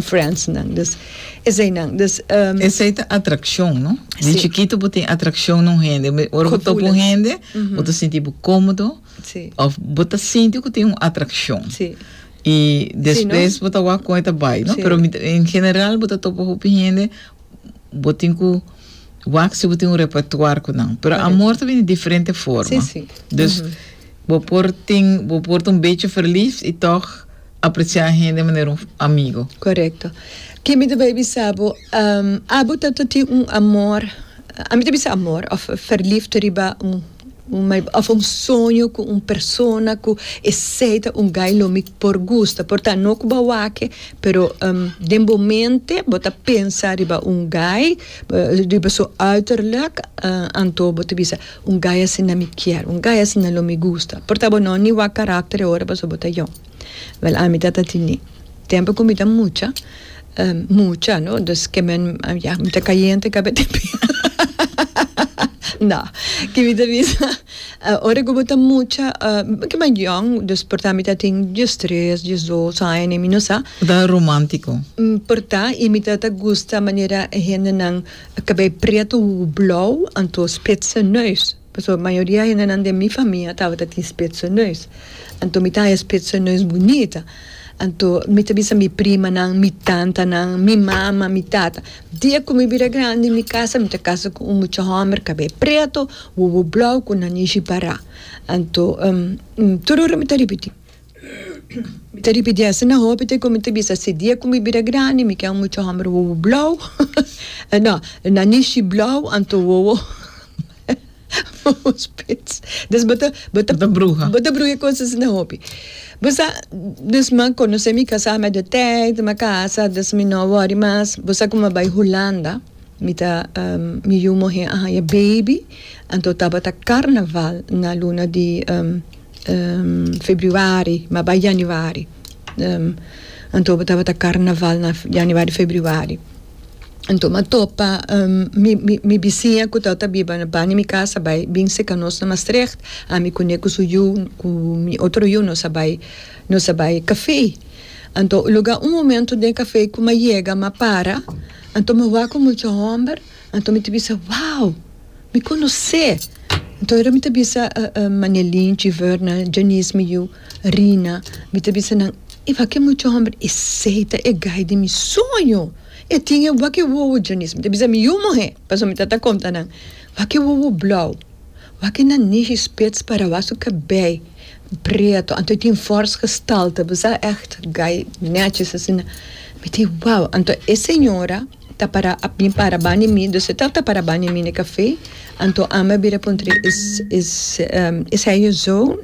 Friends nan dus esey nan dus. Esey ta atraccion no di chikito bo tin atraccion na un hende ora bo topa un hende bo ta sinti bo comodo of bo ta sinti cu tin un atraccion y despues bo ta wak con e ta bay no pero en general bo ta topa hopi hende bo tin cu wak si bo tin un repertoire cu nan pero amor ta bini diferente forma dus bo por tin bo por ta un bechi verliefd y toch. apreciá hende manera un amigo. Correcto. Ke mi ta bai bisa bo, abo ta ta tin un amor, a mi ta bisa amor of verliefd riba un un meid of un soño cu un persona cu esey ta un guy lo mi por gusta, por ta no cu bo a wak-e pero den bo mente bo ta pensa riba un guy, riba su uiterlijk, anto bo ta bisa Un guy asina mi kier. Un guy asina lo mi gusta. Por ta bo no ni wak karakter e ora pasobra bo ta young. Wel ami ta ta tini. Tempo ku mi ta mucha, mucha no, dus ke men, ya, mi ta kayente kabia te pia, no, ke mi ta bisa, ora ku bo ta mucha, bo ta mai young, dus por ta mi ta tin dies tres, dies dos aña ne, mi no sa. Bo ta romántico. Por ta, i mi ta ta gusta manera e hendenan. Cabei prieto hugo blauw anto spitse neus pasobra mayoria hendenan den mi famia tabata tin spitse neus anto mi ta haña spitse neus bunita anto mi ta bisa mi primanan mi tantanan mi mama mi tata dia cu mi bira grandi mi casa mi ta casa cu un mucha homber cabei prieto hugo blauw cu nanishi para anto tur ora mi ta ripiti. Mi ta ripiti asina hopi te komo mi ta bisa si dia ku mi bira grandi mi ken muchu hòmber wowo blou no na nishi blou anto wowo spits dus bo ta bo ta bo ta bruha e kos asina hopi bo sa dus mi a konosé mi kasá met de tèit mi a kasa dus mi no wòri mas bo sa ku mi a bai Hulanda mi ta mi yu muhé a haña baby anto tabata karnaval na luna di. Februari ma bai Januari anto bo tabata carnaval na Januari Februari anto ma topa mi bisiña cu torta biba na bani mi casa bai bin seka nos na Maastricht ami cu ne cu su yu cu mi otro yu nos a bai nos a bai cafe anto loga un momento den cafe cu ma yega ma para anto mi wak cu mucha homber anto mi ta bisa wow Mi conoce. Nto ora mi ta bisa Manelin, Chiverna, Janice mi yu, Rina, mi ta bisa nan, e wak e mucha homber, esey ta e guy di mi soño, e tin e wak e wowo, Janice mi ta bisa mi yu muhe, paso mi ta ta conta nan, wak e wowo blauw, wak e nanish y spits para wak su cabey preto, anto e tin fors gestalte, bisa echt guy netjes asina, mi ta wow, anto e señora. ta para a bin para bani mi dus e ta ta para bani mi ne kafe anto ami a bira puntra e seño zo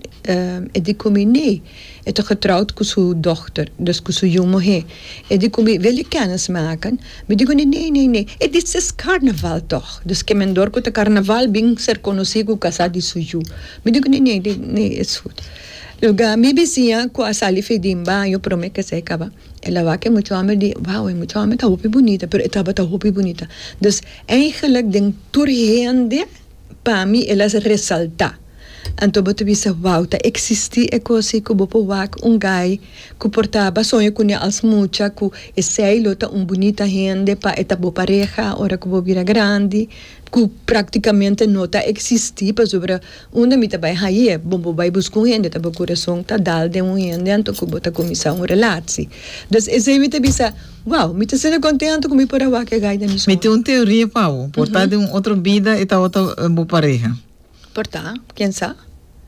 e di ku mi nee e ta getroud ku su dochter dus ku su yu muhe e di ku mi wil e kenis maka mi di ku ne nee nee nee e dis es karnaval tog dus kemendor ku ta karnaval bin ser konosi ku kasa di su yu mi di ku ne nee nee nee es gut luga mi bisiña ku a sali fedin baño prome kese kaba. El a wak e mucha omi di, wao, e mucha omi ta hopi bunita, pero e tabata hopi bunita. Dus, eigenlik den tur hende, pa mi el a resalta. Anto bo ta bisa, wao, ta eksisti e kosi ku bo por wak un gai ku por ta basoño kuné als mucha, ku esei lo ta un bunita hende pa e ta bo pareha ora ku bo bira grandi? cu practicamente no ta existi, pasobra unda mi ta bay haye, bo bo bay busca un hende ta bo corazon ta dal den un hende anto cu bo ta cuminsa un relaci. Des esey mi ta bisa, wow, mi ta sinti contento cu mi por a wak e gay den mi scorta. Mi tin un teoria pa bo, por ta den un otro bida e tabata bo pareha. Por ta, ken sa?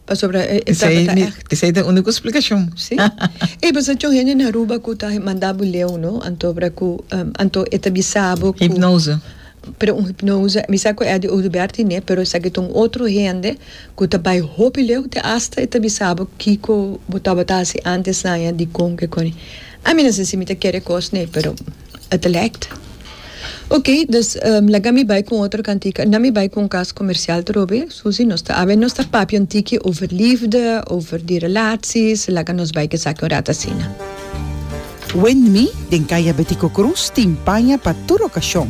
Pasobra e tabata ègt. Esei ta e úniko splikashon. Sí. Ey, pues anto hende na Aruba ku ta mandá bo leu, no? Anto obra ku, anto e ta bisa bo ku. Hipnose. Pero un hipnose, mi sa ku Eddy Oduber tin'é, pero esaki ta un otro hende ku ta bai hopi leu te asta e ta bisa bo kiko bo tabata hasi antes laña, dikon, kikon. Ami no sa si mi ta kere kos n'e, pero e ta lèkt. Ok, dus laga mi bai ku un otro kantika. Na mi bai ku un kas komersial trobe, Susi. Nos ta abia, nos ta papia un tiki over lifde, over di relaties. Laga nos bai ku esaki un rat asina. Wendmi, den kaya Betico Cruz, tin paña pa tur okashon.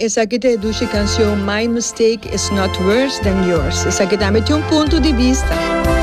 Esaki ta e dushi cancion My mistake is not worse than yours. Esaki tambe tin un punto di bista.